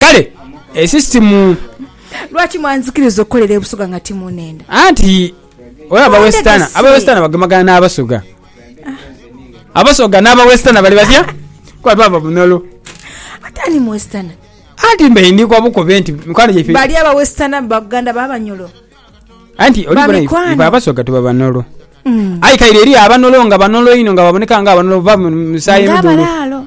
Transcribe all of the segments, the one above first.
Kale esisitimu. Lwaki mwanzikiriza okukolera e Busoga nga timunenda? Anti oyo aba western, aba western bagemagana na Abasoga. Abasoga na aba western bali batya? Kuba baba bunolo. Ate ani mu western? Anti mbe ndi kwa bukobe nti mikwano gyaife. Bali aba western baganda ba Banyolo. Anti oli bona ife Abasoga tuba banolo. Mm. Aye kaire eri abanolo nga banolo inho nga baboneka nga abanolo bava mu musaayi Nga mudhulu. abalaalo.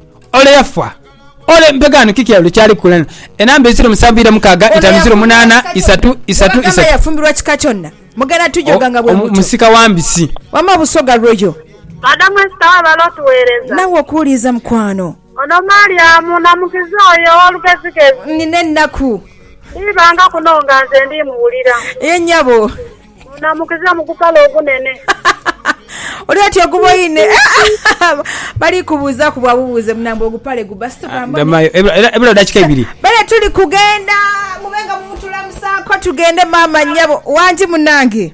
Ole yafa. Ole mpegano kiki elo kyali kukola eno? Enamba eziro musanvu ira mukaaga itanu ziro munana isatu isatu Wagamba isatu. yafumbirwa kika kyona? Mugenda tujoga nga bwe mutyo. Omusika wa mbisi. Wama Busoga Royal. Madamu Esther webale otuwereza. Nawe okuwuliiza mukwano. Ono Mariamu namukiza oyo owolugezigezi. Nina ennaku. Ndiibanga kuno nga nze ndiimuwulira. Ye nyabo. Munamukiza mu kupala okunene. Oli oti oguboine. Bali kubuuzaaku bwa bubuuze munange ogupale gubba si tugambe. Ah, Gamayo. Ebula dakika ibiri. Bale tuli kugenda mube nga mumutulamusaako tugende maama nyabo. Wangi munange.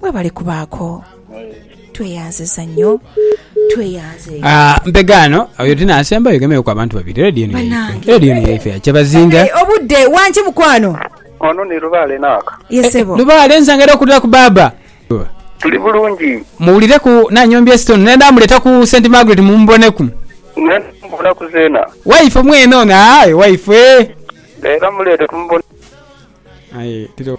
Mwebale kubaaku. Tweyanziza nnyo. Tweyanze. Ah, mpegaano oyo tinaasembayo ogemeeku abantu babiri radio eno yaife Banange. radio eno yaife ya kyabazinga Hey, obudde wangi mukwano. Ono ni lubaale naaka. Ye sebo. lubaale nsanga era okulira ku baaba Tuli bulungi. muwulireku nanyombya esitone naye ndamuleta ku st margaret mumuboneku Naye mbonaku zeena. waife mwene ono aye waife Leero muleete tumubone. aye tiro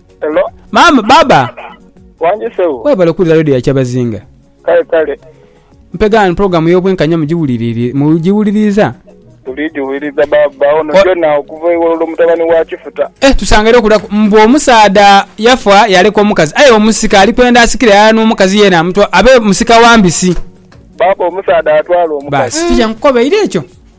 Hello. Maama, baaba. Wangi sebo. Webale kuwulira radio ya Kyabazinga. Kale kale. Mpega wano program y'obwenkanya mugiwuliriri mugiwuliriza? Tuligiwuliriza baaba ono Wa- gyona okuva ewololo mutabani wa kifuta. Eh tusangere okulaku mbu omusaadha yafa yaleka omukazi aye omusika ali kwenda asikire ala n'omukazi yena amutwa abe musika wa mbisi. Baaba omusaadha atwala omukazi. Basi tija nkukobeire ekyo.